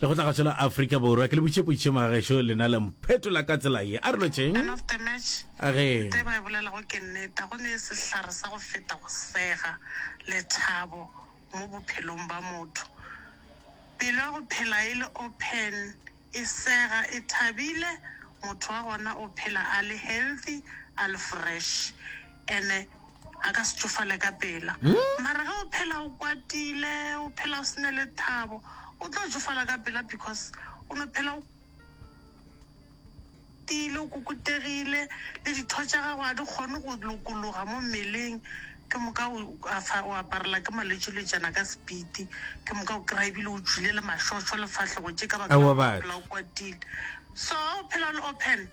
Lekgotla Kgašo la Afrika Borwa, ke le butšeputše magagešo lena le mphetola ka tsela ye. A re lo tšeng? Man of the match, A re. Tse ba e bolelago ke nneta, go ne e sehlare sa go feta go sega, lethabo mo bophelong ba motho. Pelo ya go phela e le open, e sega, e thabile, motho wa gona o phela a le healthy, a le fresh. Ene. a ka se tšofale ka pela. Mara ge o phela o kwatile, o phela o se ne le thabo, o tlo tšofala ka pela because o no phela o kwatile, o kukutegile, le ditho tša gago ga di kgone go lokologa mo mmeleng. Ke moka o a fa, o aparela ke malwetši le tšana ka sepiti. Ke moka o kry-a ebile o tšwile le mašošo le fahlego tše ka baka la Aowa, go batho. phela o kwatile. So ha o phela o le open.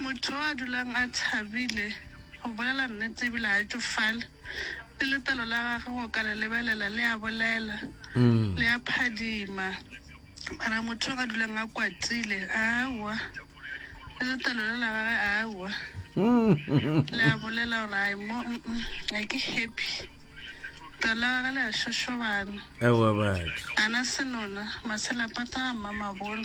Motho yo a dulang a thabile go bolela nnete ebile a tšofale, le letlalo la gage go ka le lebelela le a bolela, le a phadima. Mara motho yo a dulang a kwatile, aowa, le letlalo le la gage, aowa, le a bolela gore ai mo mm, mm, ga ke happy. Letlalo la gage le a šošobana, Ewa batho. a na senona, maselapata a mmamabolo.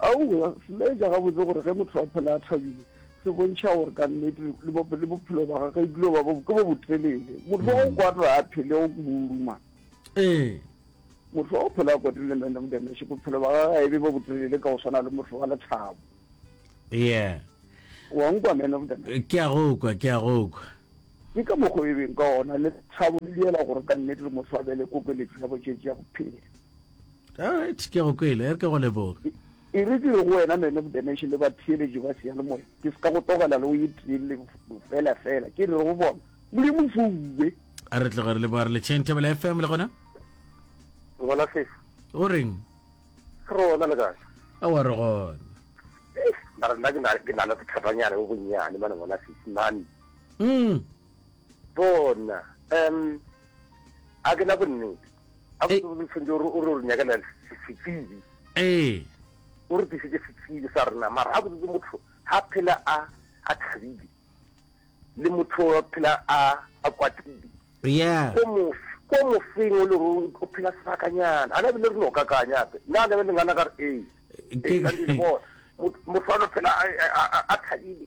Aowa, se laetša gabotse gore ge motho a phela a thabile, se bontšha gore ka nnete le bo, le bophelo ba gagwe e dilo ba bo, ke bo botelele. Motho wa go kwata a phele go kuburuma. Ee. Motho wa go phela a kwatile le Mendam Demesh, bophelo ba gagwe ga e be bo botelele ka go swana le motho wa lethabo. Yeah. Wa nkwa, man of the man. Eh, Ke a go kwa, ke a go kwa. Ke ka mokgwa o e beng ka ona lethabo le diela gore ka nnete le motho a be le kokeletšo ya botšetši ya go phela. alright ke go kwele e re ke go leboga e re ke go wena man of the nation le batheeletši ba seyalemoya ke se ka go togela le o ye treleng fela fela ke re go bona modimo fuwe a re tloga re leboga re le chain table fm le gona gona fesa o reng re ona le kae a wa re gona mara nna ke na ke na le sethatanyana bo bonnyane mane bona sesimane mm bona um a ke na bonnete a botse botse tshwanetse o re o nyakela setsebi ee o re tlisitse setsebi sa rena mara a botse motho ha phela a a thabile le motho wa phela a a kwatile yeah ko mo ko mo feng o le ro o phela sebakanyana ana bile re no kakanya pe na le le ngana ka re ee ke motho wa phela a thabile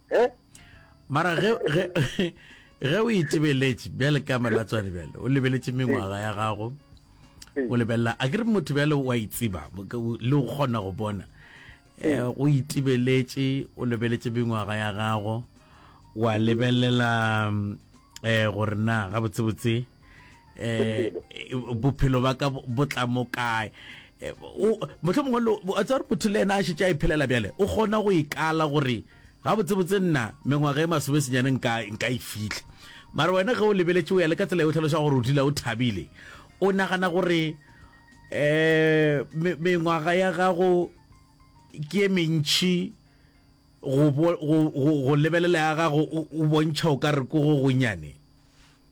he mara ge ge ge o itebeletše bjale ka melatswane bjale o lebeletše mengwaga ya gago o lebelela a ke re motho bjale wa itseba le go kgona go bona eh, o itebeletše o lebeletše mengwaga ya gago wa lebelela um gore na gabotsebotse eh bophelo ba ka bo tla mo kae eh, motlho mongwe lo a tsare motho le ena a shetse a iphelela bjale o kgona go ikala gore ga botsebotse nna mengwaga e masome senyane nka nka e fitlha mara wena ge o lebeletse o ya le ka tsela e o tlhalosa gore o dila o thabile o nagana gore eh mengwaga ya gago ke mentšhi go lebelela ya gago o bontšha o ka re ko go gonyane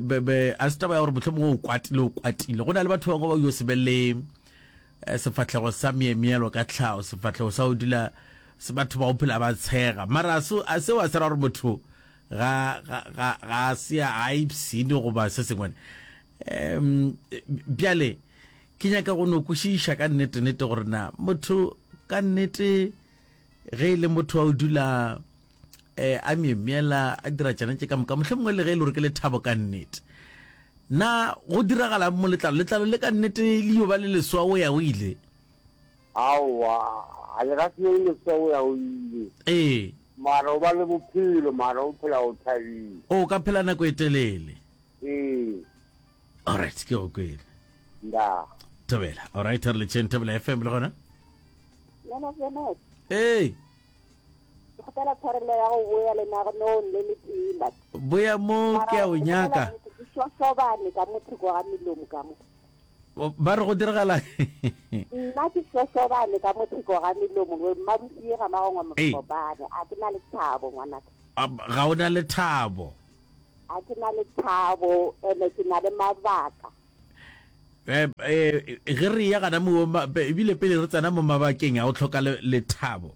Be, be, a se taba ya gore mohlomongwe o kwatile, o kwatile. Go na le batho bangwe ba yo se be le eh, sefatlhego sa miemielo ka tlhago, sefatlhego sa o dula se batho ba go phela ba tshega. Mara a se- a seo a se ra gore motho ga, ga, ga, ga a se a a ipsene goba se sengwe. Em, bjale, ke nyaka go no kwešiša ka nnete-nnete gore na motho ka nnete ge e le motho wa o dula eh, a myemyela a dira tšana tše ka moka mohlhe mongwe le ge e le gore ke lethabo ka nnete na go diragala mo letlalo letlalo le ka nnete le yo ba le leswa o ya o ile aowa a le ga seo leswa o ya o ile ee mara o ba le bophelo mara o phela o thabile o ka phela nako e telele ee alright ke go kwele nda thobela alright re le tšheng thobela fm le gona ee kgopela tshwarelo ya go boya lenaganong le letee mat boya mo ke a o nyaka ke shoshobane ka mo thoko ga melomo ka mo ba re go diragala nna ke shoshobane ka mo thoko ga melomo mmabusie ga magongwa mokopane a ke na le thabo ngwanaka ga o na le thabo a ke na le thabo ene ke na le mabaka eh, eh, ge re ya gana mo ebile pele re tsena mo mabakeng a go tlhoka lethabo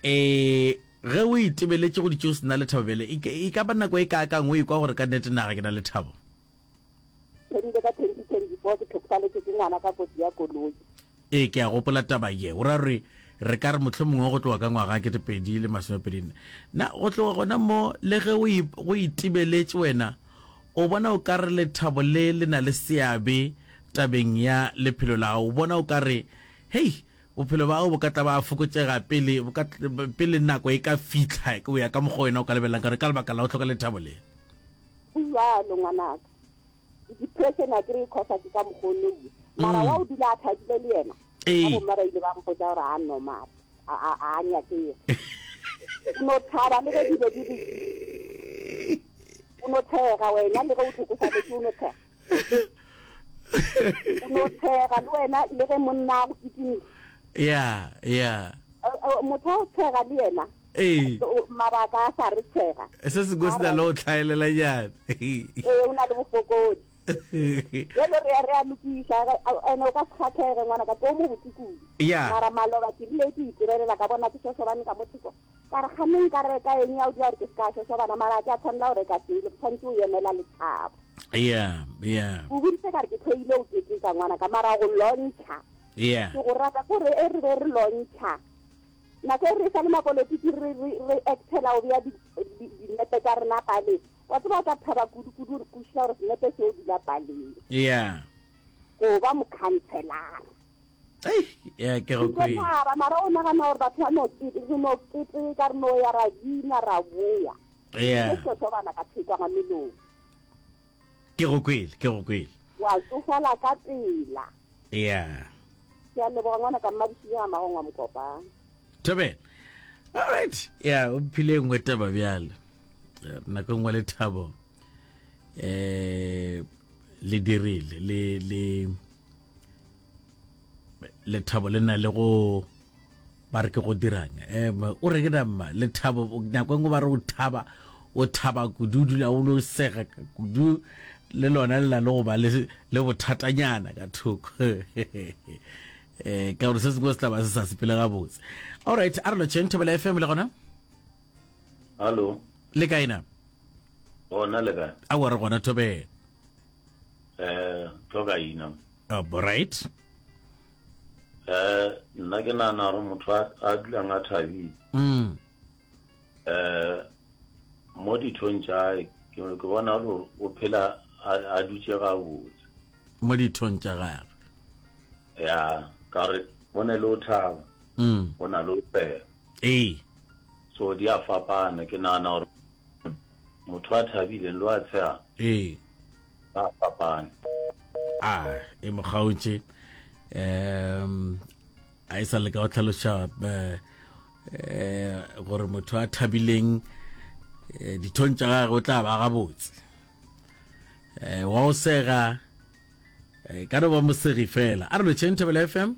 eh ge o itebeletse go ditse o sena lethabo bele e, e ka ba nako e kaakang o ikwa gore ka nnete naga ke na lethabo erile ka twenty twenty four ke tlhokofaletse ke ngwana ka kotsi ya koloi Ee, ke a gopola taba ye. O ra gore re ka re mohlomongwe go tloga ka ngwaga wa ketepedi le masomepedi nne. Na go tloga gona mo, le ge o, go itibeletše wena, o bona o ka re lethabo le le na le seabe tabeng ya lephelo la gago? O bona o ka re, Hei, bophelo bja gago bo ka tla ba fokotšega pele, bo ka, pele nako e ka fihla, go ya ka mokgwa wena o ka lebelelang ka gona, ka lebaka la go hloka lethabo le? Go bjalo, ngwanaka. depression a kry cause a ke ka mokgwa o nne mara wa o dula a thabile le yena ka bomma ba ile ba mpotsa gore a normal a nyakege o no thaba le ge dilo di le o no thega wena le ge o tlhokofaletse o no thega o no thega le wena le ge monna a go kitimile ya ya motho a o thega le yena Ee. O- mabaka a sa re tshega se sengwe se na le go tlhaelelanyane ee o na le bofokodi jalo re ya re a lokiša re- a- ene o ka se kgathege ngwana ka tlo mo botse kudu Ya. mara maloba ke rile ke itirelela ka bona ke šošobane ka mo thoko ka re gane nka reka eng ya o dira gore ke se ka šošobana mara a ke a tshwanela go reka sele ke tshwanetse o emela lethabo ya ya o boditse ka re ke tlhoile o keteka ngwana ka mara go lontšha ya ke go rata kore e re be re lontšha Nako e re sa le mapolotiki re re re actela go bea dinepe tsa rena paleng wa tseba o tla thaba kudu kudu go šila gore senepe seo dula paleng yeah go ba mokhanselara ya ke go kwe ba mara o nagana gore batho ba no ke re no ke tse ka re no ya ra dina ra boya yeah ke so so bana ka tshekwa ga melong Ke go kwele, ke go kwele. Wa tsofala ka pela. Yeah. Ke a leboga ngwana ka mmadišile ga magong wa mokopa. Thobela. All right. Yeah, o phile e nngwe taba bjale. Nako nngwe le thabo. Eh le dirile le le lethabo le na le go ba re ke go dirang um o re ke nama lethabo nako engwe ba re o thaba o thaba kudu dula o lo sega kudu le lona le na le go ba le bothatanyana ka thoko um ka gore se sengwe se tlaba se sa sepele gabotse allright a re lotšheng thobela fm le gona hallo le kaena gona le kae a wa re gona thobela eh tlo ka ina oh, right eh nna ke nana gore motho a dulang a thabile mm. eh mo dithong tša ke bona gore o phela a dutse gabotse mo dithong tša gage ya ka re o ne le o thaba mm. o na le o pela ee so di a fapana ke nagana gore Motho a thabile lo a tsheang. Ee. Ba fapane. A e mo kgaotše um a e sa leka go tlhaloša eh, eh, gore motho a thabileng eh, dithong tša gage o tla ba gabotse um wa o sega ka no ba mosegi fela a re lo chain thabela f m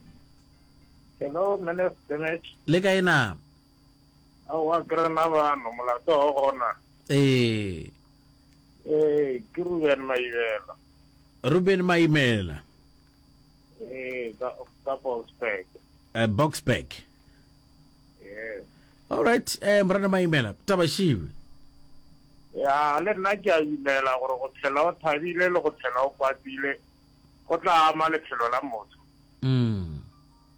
le kae na Aowa ke rena bano, molato o gona. Ee. Ee, ke Ruben Maimela. Ruben Maimela. Ee, ka, ka Boksburg. Uh, Boksburg. Yes. All right, eh, Morena Maimela, taba šiwe. ya le nna ke a dumela gore go tshela o thabile le go tshela o kwatile go tla ama lephelo la motho mm.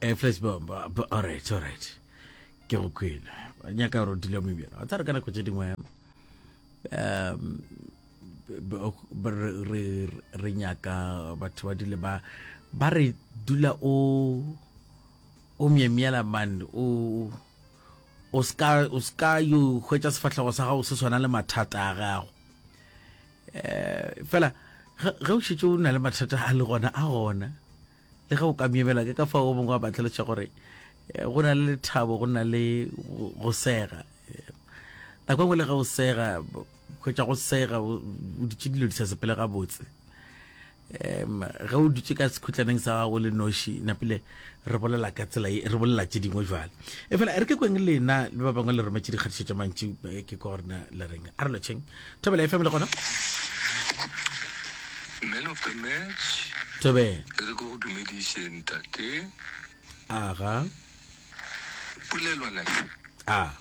Eh, flash bomb ba- ba- alright alright ke go kwele ba nyaka gore o dile mo ebjela wa tsare ka nako tse dingwe um b- b- re re- re nyaka batho ba dule ba ba re dula o o myemyela man o o ska o ska yo hwetša sefahlego sa gago se swana le mathata a gago eh fela ge ge o šetse o na le mathata a le gona a gona Le ge o ka myemela, ke ka fao o mongwe a ba tlhaloša gore go na le lethabo, go na le go sega. Nako engwe le ge o sega, kgwetša go sega o ditše dilo di sa sepele gabotse um ge o dutše ka sekhutlaneng sa gago le noši napile re bolela ka tsela e re bolela tše dingwe jale e fela re ke kweng lena le ba bangwe le rometše dikgatišo tša mantši ke korna le reng a re lotšheng Thobela FM le gona. Man of the match. Tobe. Re go go dumediše ntate. Aga. Pulelwana. Ah.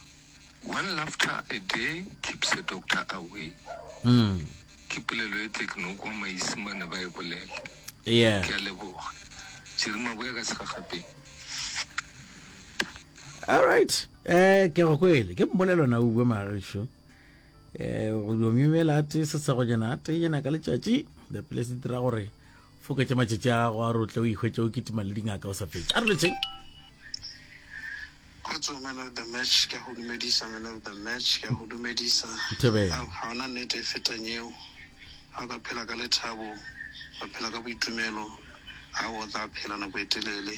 One laughter a day keeps a doctor away. Mm. Ke pulelo e tle ke no kwa maisimane ba e bolela. Yeah. Ke a leboga. Jerima boya ka segagape. All right. Eh ke go kwele. Ke mmolelona o bua magisho. um go dio memela a tee sesegonyana a teenyana ka letšatši the place dira gore foketse matšatši a gago a rotle o ikgwetse o kitima le dingaka o sa fetse a re letšeng kgotso man of the match ke go dumedisa man of the match ke go dumedisa ga ona nnete e fetang eo ga o ka phela ka lethabo ba phela ka boitumelo ga o tla phela nako e telele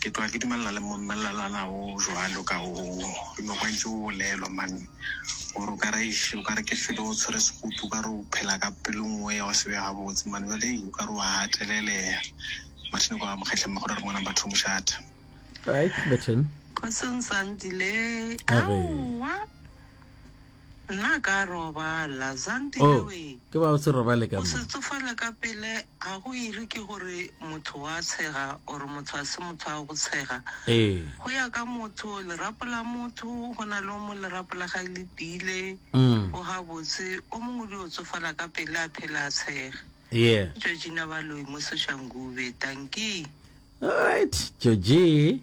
Ke tloga ke dumelana le mmelelana wo jwalo ka wo noko a ntse o bolelwa mane gore o ka re o ka re ke felo o tshwere sekutu o ka re o phela ka pelo nngwe ya go se be gabotse mane jale o ka re wa gatelelea mathine kwa mokgetlheng magore re ngwana batho mošata right betten kgotsong sandile aowa Nna ka robala, Zandile Oh, we. ke ba o se robale ka O mo. se tsofale ka pele, ga go iri ke gore motho wa tshega or motho a se motho a go tshega. Ee. Go ya ka motho, lerapo la motho go na le o mo lerapo la gae le tiile. Mm. O gabotse, o mongwe di o tsofala ka pele a phela a tshega. Yeah. Georgina Baloyi mo Soshangube, tankee. Alright, Georgie.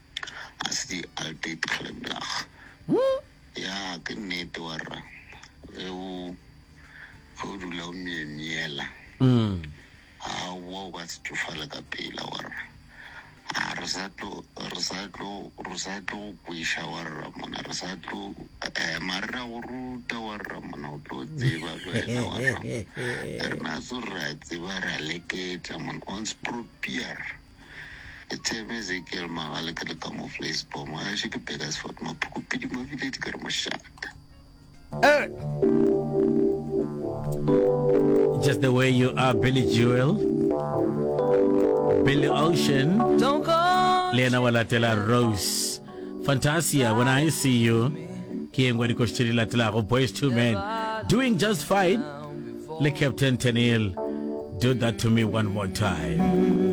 ga se di Alpid Kgleblach. Ya ke nnete wa rra ge o ge o dula o myemyela a wa o ka se tšofale ka pela wa rra a re sa tlo re sa tlo re sa tlo go kweša wa rra mona re sa tlo ema re ra go ruta wa rra mona o tlo tseba le wena wa rra rena tso re a tseba re a leketla mona ons propier Ke tshepe Ezekiel Magale ke le ka mo Vleisbom, ga ešo ke Burgersfort, Maphukupedi mo Village ke re mošate. Just the way you are Billy Joel Billy Ocean Don't go le yena wa latela Rose Fantasia when I see you ke yengwe ya dikoši tše di latelago Boys Two Men doing just fine le Captain Tenil do that to me one more time